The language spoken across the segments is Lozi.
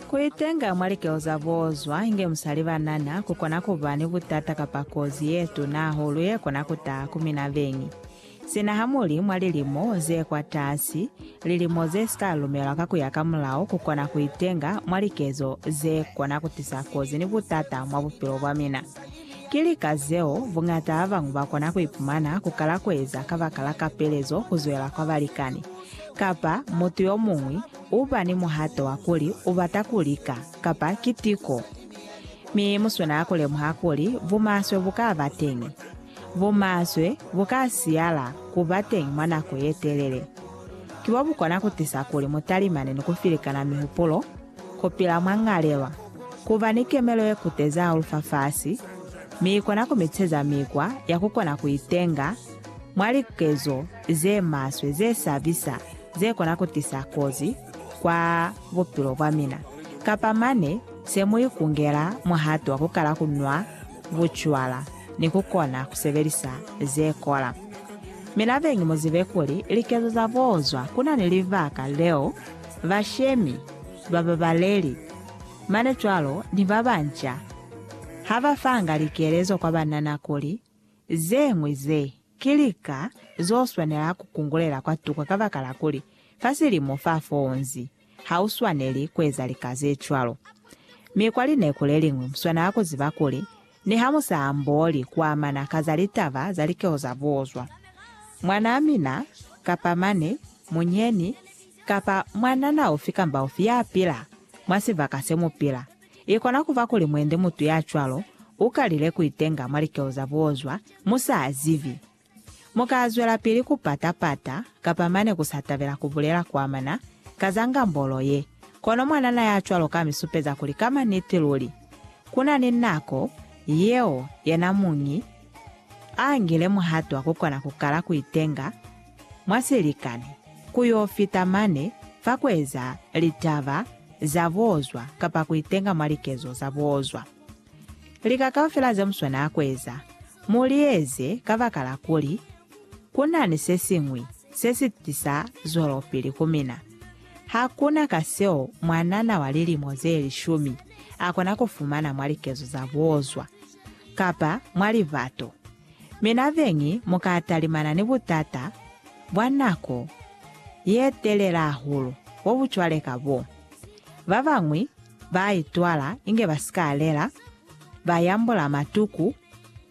Ku itenga mwa likeo za bozwa inge mu sa li banana ku kona ku ba ni butata kapa kozi ye tuna hahulu ye kona ku taha ku mina beñi. Sina ha mu li mwa lilimo ze kwatasi, lilimo ze si ka lumelwa ka ku ya ka mulao ku kona ku itenga mwa likezo ze kona ku tisa kozi ni butata mwa bupilo bwa mina. Ki lika zeo buñata ba bañwi ba kona ku ipumana ku kala ku eza kabakala kapelezo ku zwela kwa balikani kapa mutu yo muñwi U ba ni muhato wa kuli u bata ku lika, kapa ki tiko. Mi mu swanela ku lemuha kuli bumaswe bu ka ba teñi. Bumaswe bu ka siyala ku ba teñi mwa nako ye telele. Ki bwa bu kona ku tisa kuli mu talimane ni ku filikana mihupulo, ku pila mwa ñalelwa, ku ba ni kemelo ye kutezi hahulu fafasi, mi i kona ku mi teza mikwa ya ku kona ku itenga mwa likezo ze maswe ze sabisa. ze kona ku tisa kozi kwa bupilo bwa mina, kapa mane se mu ikungela muhato wa ku kala ku nwa bucwala ni ku kona ku sebelisa ze kola. Mi labengi mu zibe kuli likezo za bozwa ku na ni libaka leo bashemi ba babaleli mane cwalo ni ba banca ha ba fanga likelezo kwa banana kuli Zeñwi ze ki lika zo swanela ku kungulela kwa tuko kabakala kuli fa silimo fa foonzi ha u swaneli ku eza lika ze cwalo. Mi kwa lineku le liñwi mu swanela ku ziba kuli niha mu sa ambooli ku amana ka za litaba za likeho za buozwa, mwanaa mina kapa mane, munyeni, kapa mwanana ufi kamba ufi ya pila mwa sibaka se mu pila, I kona ku ba kuli mwendi mutu ya cwalo u kalile ku itenga mwa likeo za buozwa mu sa zibi. Mu ka zwelapili ku pata-pata kapa mane ku sa tabela ku bulela ku amana ka za ngambolo ye, kono mwanana ya cwalo ka mi supeza kuli ka maniti luli, ku na ni nako yeo yena muñi a ngile muhato wa ku kona ku kala ku itenga. mwa silikani ku yo fita mane fa ku eza litaba za buozwa kapa ku itenga mwa likezo za buozwa. Lika kaufela ze mu swanela ku eza, mu li eze kabakala kuli ku na ni se siñwi se si tisa zwelopili ku mina. Ha ku na ka seo mwanana wa lilimo ze lishumi a kona ku fumana mwa likezo za buozwa. kapa mwa libato. Mi na beñi mu ka talimana ni butata bwa nako ye telela hahulu bo bu cwale ka bo. Ba bañwi ba itwala inge ba si ka lela, ba yambula matuku,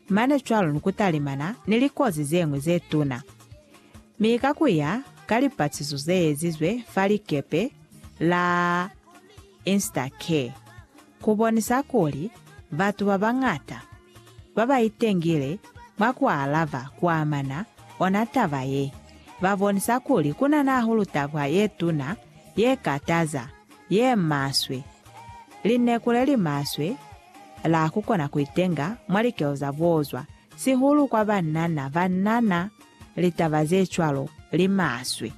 mane cwalo ni ku talimana ni likozi ze ñwi ze tuna. Mi ka ku ya ka lipatiso ze ezizwe fa likepe la Instacare, ku bonisa kuli batu ba bañata ba ba itengile mwa ku alaba ku amana ona taba ye, ba bonisa kuli ku na nahulu taba ye tuna, ye kataza, ye maswe, lineku le li maswe la ku kona ku itenga mwa likelo za bozwa, sihulu kwa banana ba na na litaba ze cwalo li maswe.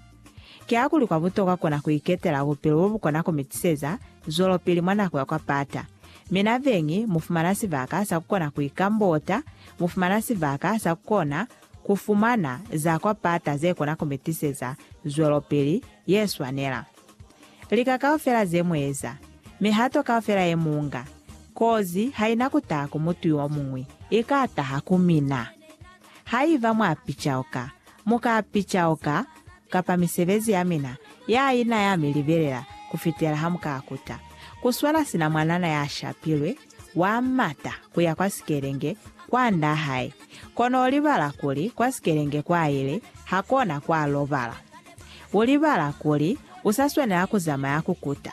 Kiakuli kwa butokwa kona ku iketela bupilo bo bu kona ku mi tiseza zwelopili mwa nako ya kwa pata. Mi na beñi mu fumana sibaka sa ku kona ku ikambota, mu fumana sibaka sa ku kona ku fumana za kwa pata ze kona ku mi tiseza zwelopili ye swanela. Lika kaufela ze mu eza, mihato kaufela ye mu nga, kozi ha i na ku taha ku mutu yo muñwi, i ka taha ku mina. Haiba mwa picauka, mu ka picauka, kapa misebezi ya mina ya ina ya mi libelela ku fitela ha mu ka kuta. Ku swana sina mwanana ya shapilwe, wa mata ku ya kwa sikelenge, kwa nda hae, kono u libala kuli kwa sikelenge kwa ile, ha kona kwa lobala. U libala kuli u sa swanela ku zamaya ku kuta.